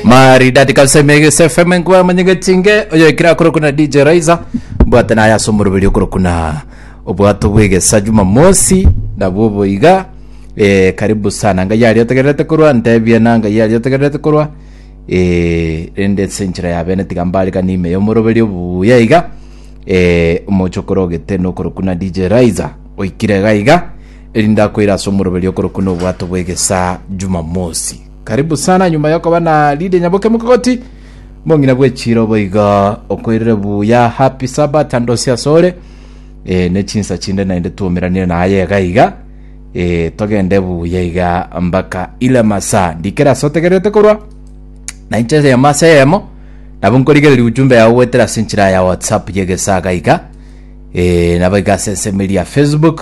maridadi kabisa emegese fm nkwa manyegetinge oyo ekira akorokuna dj raiza mbwate naye ase omoroberi okorokuna obwato bwegesa jumamosi nabwo boiga eh, karibu sana ngai aria otegererete korwa ntebie na ngai aria otegererete korwa eh, rende ase enchera ya bene tiga mbarikani ime y'omoroberi obuya iga eh, omochokoro ogete nokorokuna dj raiza oikire gaiga Erinde akoire ase omoroberio okorokwa nobwato bw'egesaa Jumamosi. Karibu sana nyuma yokoba na Lydia Nyaboke Mokogoti, mong'ina bwe chiro boigo. Okoirire buya, happy Sabbath and osi asore. E, ne chinsa chinde naende twomeranire naye iga iga. E, togende buya iga mpaka ile masaa. Ndikera ase otegererete korwa na inche eyemo ase eyemo nabo nkorigereria ujumbe yao goetera ase enchera ya whatsapp y'egesaa iga iga e, nabo iga ase ense media facebook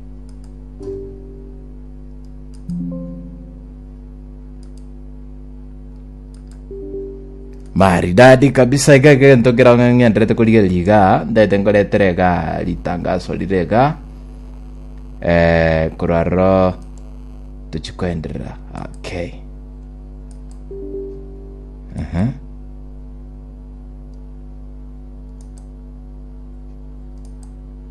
maridadi kabisa iga egento kerao ng'a ng'enderete korigereria iga ndete nkoretera iga ritangaso rire iga eh, korwa rero tochi koenderera okay Aha.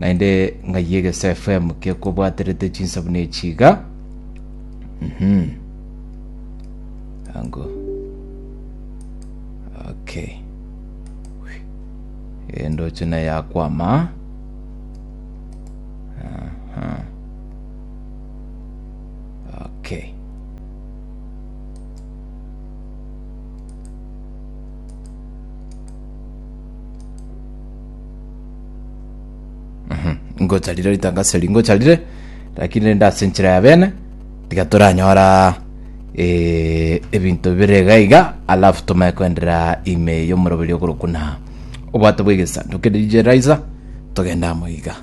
Naende ng'ai egese FM kekobwaterete chinsabu nechi iga. Mhm. Ango. Okay. Endoche na yakwama. Aha. Okay. Mhm. ngocharire ritangaso eri ngocharire lakini rende ase enchera ya bene tiga toranyora eh, ebinto bire iga iga alafu tomae koenderera ime y'omoroberi okorokuna obwato bw'egesanduku kende rije raiza togenda amo iga